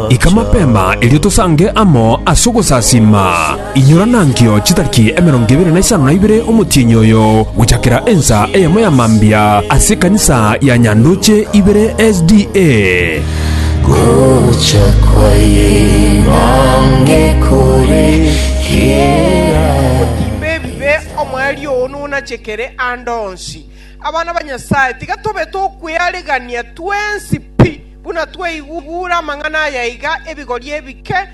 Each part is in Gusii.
Ika mapema erio tosange amo ase ogosasiima. Inyora nankio chitariki emerongo ebere na isano na ibere omotienyi oyo gochakera ensa eyemo ya mambia ase ekanisa ya Nyandoche ibere SDA. Gocha kwa Imbange kore kera. Otimbe ebibe, omoerio oo nonachekere ande onsi. Abana ba Nyasae, tiga tobe tokwearegania twensi pi. Buna twaigure amang'ana aya iga ebigori ebike,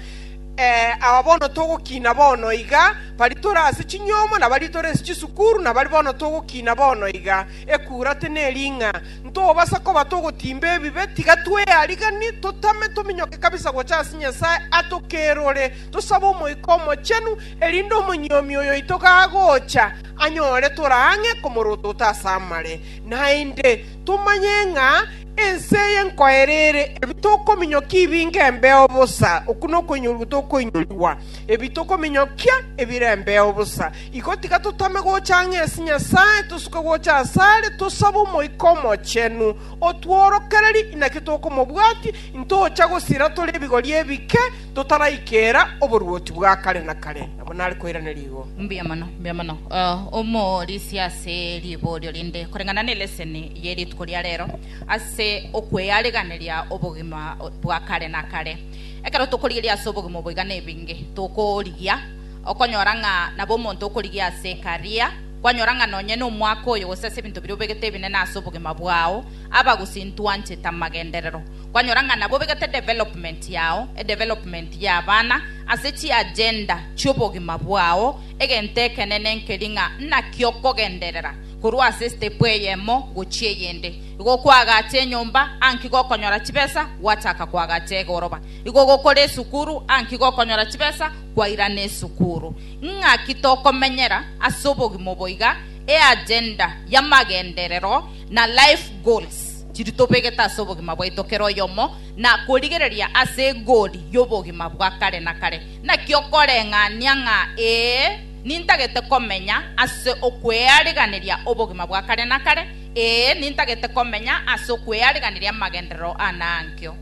aba bono togokina bono iga, baria tore ase chinyomo na baria tore ase chisukuru, na baria bono togokina bono iga. Ekurate neri ng'a ntobasa koba togotimba ebibe, tiga tweariganie, totame tominyoke kabisa gocha ase Nyasae atokerore, tosabe Omoika Omochenu, erinde omonyuomi oyoito gagocha anyore tore ang'e komorotota ase amare, naende tomanye ng'a Ense eye nkoereire, ebi tokominyokia ibinge embeo bosa, okwo nokoinyorigwa tokoinyorigwa, ebi tokominyokia ebire embeo bosa. Igo tiga totame gocha ang'e ase Nyasae, tosuke gocha asare, tosabe Omoika Omochenu, otworokererie inaki tokomobwatia, intocha gosira tore ebigori ebike, totaraikera oboruoti bwa kare na kare. Nabo nare koiraneria igo. Mbuya mono, mbuya mono, eh, omorisia ase riborio rinde koreng'ana neleseni. ye rituko ria rero ase okweariganeria obogima bwa kare na kare. Ekero tokorigeria ase obogima oboiga nebinge tokorigia okonyora ng'a nabo omonto okorigia ase ekaria kwanyora ng'a nonye nomwaka oyo gose ase ebinto biria obegete ebinene ase obogima bwao aba gose intwanchete amagenderero kwanyora ng'a nabo obegete development yao edevelopment ya abana ase chiagenda chiobogima bwao egento ekenene nkeri ng'a naki okogenderera korwa ase estepu eyemo gochia eyende. Igo kwagacha enyomba, anki gokonyora chibesa, gwachaka kwagacha egoroba. Igo gokora esukuru, anki gokonyora chibesa, kwairana esukuru. Ing'aki tokomenyera ase obogima obo iga, eagenda y'amagenderero na life goals chiria tobegete ase obogima bwaito kera oyomo, na korigereria ase egori y'obogima bwa kare na kare. Naki okoreng'ania ng'a ee. Nintagete komenya ase okweariganeria obogima bwa kare na kare, ee, nintagete komenya ase okweariganeria amagenderero ana ankio.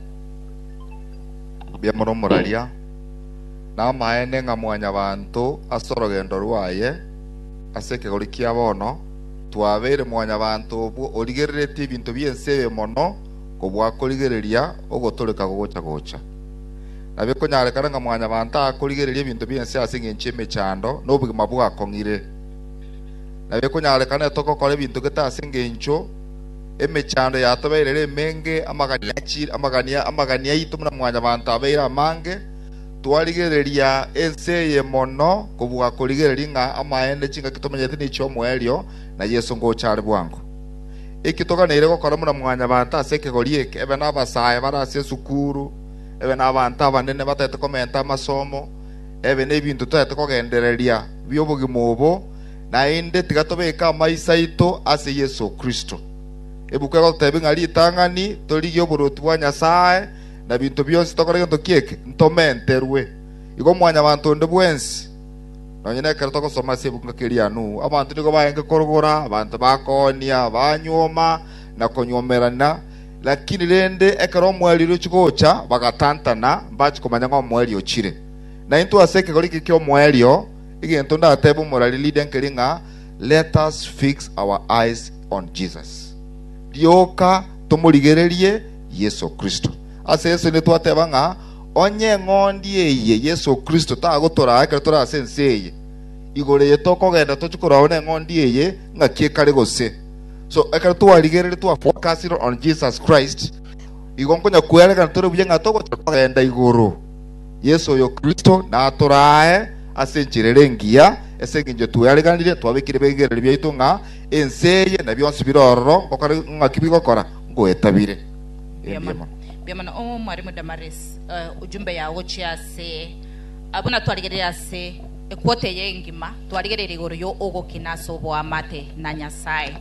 Biamura omoraria. Namaene ng'a mwanyabanto ase orogendo rwaye ase ekegori kia bono, twabeire mwanyabanto obwo origereretie ebinto bi'ense ebe mono kobua korigereria ogotoreka gogocha gocha. na bikonyarekana ng'a mwanyabanto akorigereria ebinto bi'ense ase engencho y'emechando na obogima bwakong'ire, na bikonyarekana nere togokora ebinto gete ase engencho emechando yatobeire ere emenge, amagani aito buna mwanyabanto abeire amange, twarigereria ense eye mono kobua korigereria ng'a amaene chingaki tomenyete nichi'omoerio, na Yeso ngocha are bwango. Eki toganeire gokora buna mwanyabanto ase ekegori eke, ebe nabasae bare ase esukuru, ebe nabanto abanene batagete komenta amasomo, ebe nebinto totagete kogendereria bi'obogima obo, naende tiga tobeke amaiso aito ase Yeso Kristo. Ebuku egototebia ng'a ritang'ani torigie oboruoti bwa Nyasae, na binto bionsi tokore gento ki'eke, ntomenterwe. Igo mwanyabanto onde bwensi, Nonya nekero togosoma ase ebuku ng'a keria Nuhu, abanto nigo baeenge korogora, abanto bakoonia, banyuoma, na konyuomerana. Lakini rende ekero omweri orochia gocha bagatantana, mbachi komanya ng'a omweri ochire. Naintwe ase ekegori eke ki'omoerio, egento ndatebe omorari Lydia nkeri ng'a, Let us fix our eyes on Jesus. Rioka tomorigererie Yeso Kristo. Ase Yeso nigo twateba ng'a, Onye eng'ondi eye Yeso Kristo tagotoraa ekero tore ase ense eye, igoro eye tokogenda tochie korwao neng'ondi eye ngaki ekare gose. So, ekero twarigereire twa focused on Jesus Christ, igo nkonya kwerekana tore buya ng'a togochia kogenda igoro. Yeso oyo Kristo natoraae ase enchera ere engiya, ase engencho tweareganire, twabekire ebirengererio biaito ng'a ense eye na bionsi bire ororo ngokore ng'aki bigokora, ngoetabire. Erio nigo. Mbiamano oo Mwarimu Damaris, eh, ujumbe yao gochia ase abwo natwarigereire ase ekwota eye engima, twarigereire igoro yo ogokina ase oboamate na Nyasae.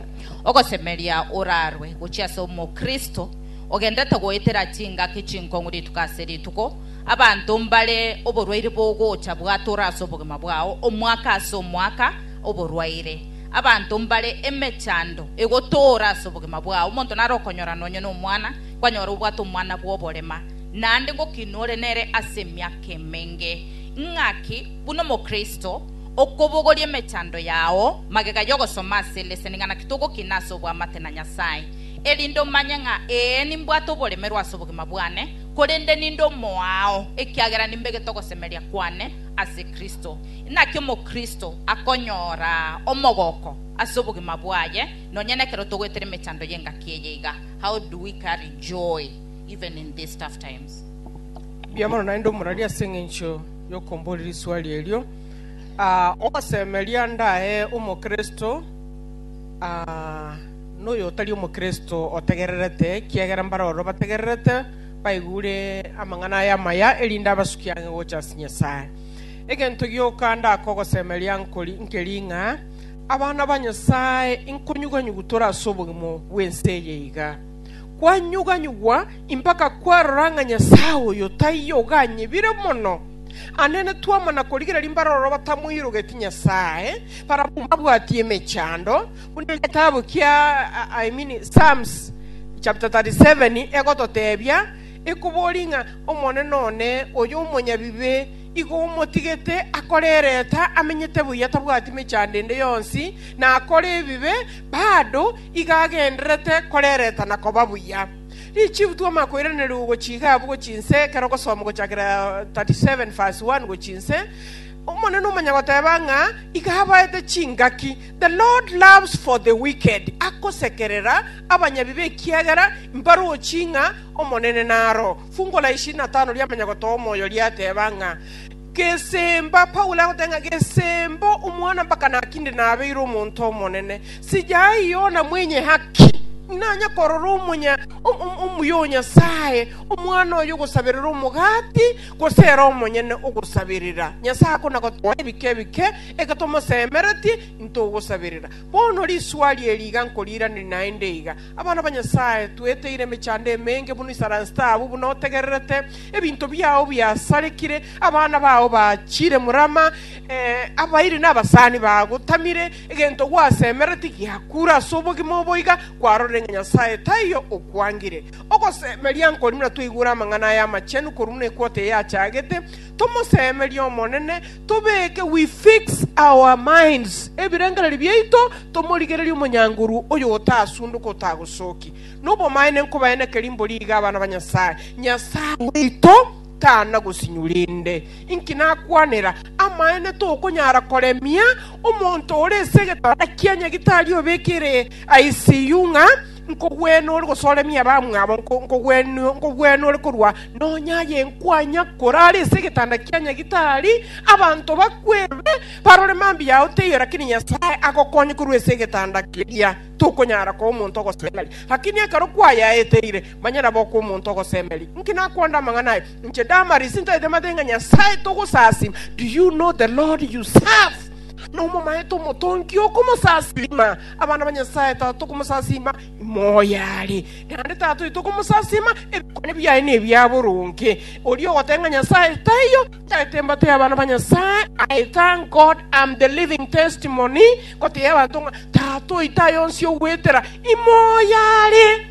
Ogosemeria orarwe gochia ase omokristo ogendete goetera chingaki chinkong'u rituko ase rituko, abanto mbare oborwaire bogocha bwatora ase obogima bwao omwaka ase omwaka, oborwaire, abanto mbare emechando egotoora ase obogima bwao, omonto nare okonyora nonye nomwana, Kwanyora obwate omwana bw'oborema, naende ngokinwa ore nere ase emiaka emenge. Ing'aki, buna Omokristo, okobogoria emechando yao, magega y'ogosoma ase leseni ng'a naki togokina ase obwamate na Nyasae, erinde omanye ng'a ee nimbwate oboremerwa ase obogima bwane, korende ninde omoao, ekiagera nimbegete ogosemeria kwane ase Kristo. Inaki Omokristo akonyora omogoko ase obogima bwaye nonya nekero togoetera emechando y'engaki eye iga. How do we carry joy even in these tough times? Mbuya mono naende omorari ase eng'encho yokomboria risuari erio. Ah, ogosemeria ndae omokristo ah, noyo otari omokristo otegererete, kiagera mbare ororo bategererete baigure amang'ana aya amaya erinde abasuki ang'e gocha ase Nyasae. Egento gioka ndaka ogosemeria nkori nkeri ng'a Abana ba Nyasae, inkonyuganyugu tore ase obogima bw'ense eye iga. Kwanyuganyugwa mpaka kwarora ng'a Nyasae oyo taiyo oganyebire mono. Anene twamana korigereria mbaroro batamoirogeti Nyasae, barabwo mbabwati emechando, buna egetabu kia I mean Psalms chapter 37 egototebia, ekoboria ng'a Omonene one, oyo omonyabibe, Igo omotigete akore ereta, amenyete buya, tabwati mechando ende yonsi, na akore ebibe, bado iga agendererete kore ereta na koba buya. Richifu twoma koiraneria ogochia iga abwo chinse, ekero ogosoma ogochakera 37 verse 1 gochia inse, Omonene omonyagoteba ng'a iga abaete chingaki, The Lord loves for the wicked, agosekerera abanyabibe ekiagera mbarochi ng'a Omonene naro. Fungo la ishirini na tano ria Manyagoto Omoyo riateba ng'a Gesemba, Paulo agoteba ng'a Gesemba omwana mpaka naki inde nabeire omonto omonene? Sijai Yona mwenye haki? Nanya korora omonya o- o- omuya o Nyasae, omwana oyo ogosaberera omogati, gose ere omonyene ogosaberera? Nyasae akona gotoa ebike ebike, eke tomosemeretie, intogosaberera. Bono risuari eri iga nkoriiraneria naende iga, Abana ba Nyasae, tweteire emechando emenge buna isaransi taabu buna otegererete, ebinto biao biasarekire, abana bao bachire murama, ee, abairi na abasani bagotamire, egento gwasemereti giakure ase obogima obo iga kwarorire ng'a Nyasae taiyo okwangire. Ogosemeria nkori buna twaigure amang'ana aya amachenu korwa buna ekwoti eye achagete, Tomosemerie Omonene, tobeke, we fix our minds, ebirengererio biaito, tomorigererie omonyangoru oyo otasunduka otagosoki. Nobomaene nkobaye nekerimbo riiga abana ba Nyasaye, Nyasaye oito tana gosinywa rende. Inki nakwanera? Amaene tokonyara koremia omonto ore ase egetanda kia nyagitari obekire ICU ng'a Nkogwena ore gosooremia abamwabo, nkogwena ore korwa nonya aye nkwanya korara ase egetanda kia nyagitari. Abanto bakwebe, barore mambia yao teiyo, lakini Nyasae agokonye korwa ase egetanda keria. Tokonyara koa omonto ogosemeria, lakini ekero kwayaeteire, manya nabo okoa omonto ogosemeria. Inki nakwonde amang'ana aye? Inche Damaris ntaete mate ng'a Nyasae togosasima. Do you know the Lord you serve? Nomomaete Omotongi okomosasima. Abana ba Nyasae, Tata, tokomosasima ime oyare, naende Tata oito okomosasima, ebikone biaye nebia boronge. Oria ogoteba ng'a Nyasae taiyo, tagete embato y'abana ba Nyasae. I thank God am the living testimony, gotebia abanto ng'a Tata oito aye onsi ogwetera ime oyare,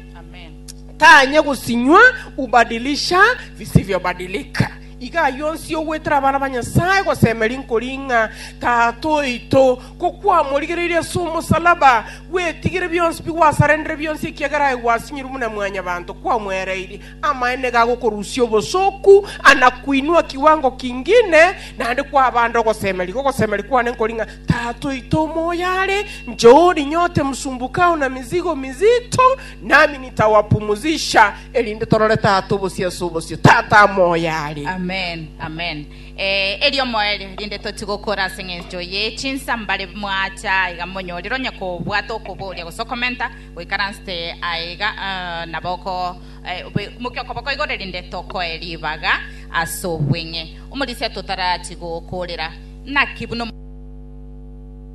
tanye gosinywa ubadilisha visivyobadilika. Iga ayio onsi ogwetera abana ba Nyasae gosemeria nkori ng'a Tata oito, kokwamorigereirie ase omosalaba, gwetigire bionsi bigwasarendere bionsi ekiagera aye gwasinyorwe buna mwanyabanto kwamwereirie. Amaene iga agokorusia obosooku, ana koinwa kiwango kingine, naende kwabande ogosemeria. Igo ogosemeria kwane nkori ng'a Tata oito omoyare, njoo orinyote msumbukao na mizigo mizito, Nami nitawapumuzisha, erinde torore Tata obosio ase obosio. Tata amoyo are. Amen, amen. Eh, erio moerio rinde toti gokora ase ng'encho ye chinsa mbare mwacha iga monyorire onye kobwata okoboria gose okomenta goikaransete aiga eh, nabo oko eh, obe- mokia okoboko igoro rinde tokoe ribaga ase obweng'e omorisia totarachi gokorera naki buna